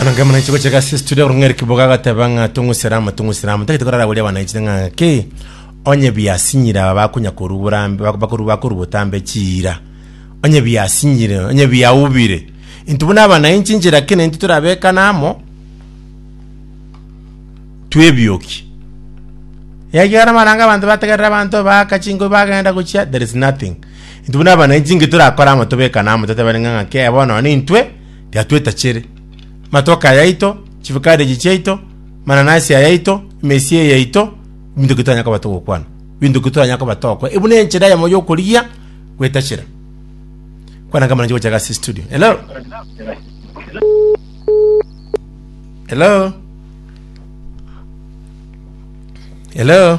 ananga mwananchi gocheka ase studio korong'a eri kiboga agateba ng'a tong'usera ama tong'usera ama tagete korara boria wananchi ng'a ki onye biasinyire aba bakonya korwa borambe bak- bakoru bakoru botambe chiira onye biasinyire onye biaubire intwe buna abananchi inche lakini intwe torabekane amo twebioki yaya amaranga abanto bategerera abanto baaka chinguru bagenda gochia there is nothing Intwe buna abana inchi inki torakore amo tobekane amo toteberenge ng'a kee bono nonya intwe tiatwetachere. Amatoke ayaito, chifikadeji chiaito, mananasi ayaito, emesia eyaito, ebinto ki twanya koba togokwana? Ebinto ki twanya koba togokwa? Ebu nenchera eyemo yokorigia gwetachera. Kwana kama nanchi gochaka ase studio. Hello? Hello? Hello?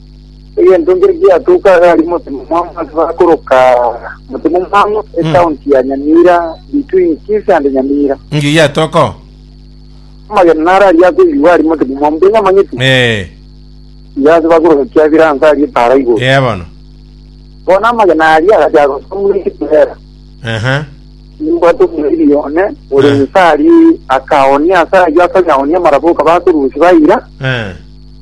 Egento nkere giatoka agari motema mwang'u ase bakoroka motema mwang'u ecounty ya Nyamira between Kisii and Nyamira. Nki giatoka oo? Amagena naro aria akoigwa ari motema mwang'u mbwenye amanyeti. Eh, Iga ase bakoroka kiabira ansa aria epara igoro. eh bono. Bono amagena aria agacha gosomwa ekiturera. Aha. Nimbwate omoriri one ore Ah. nsa aria akaonia ase ayio akanyaonia amaraboka bakorusia baira. Eh.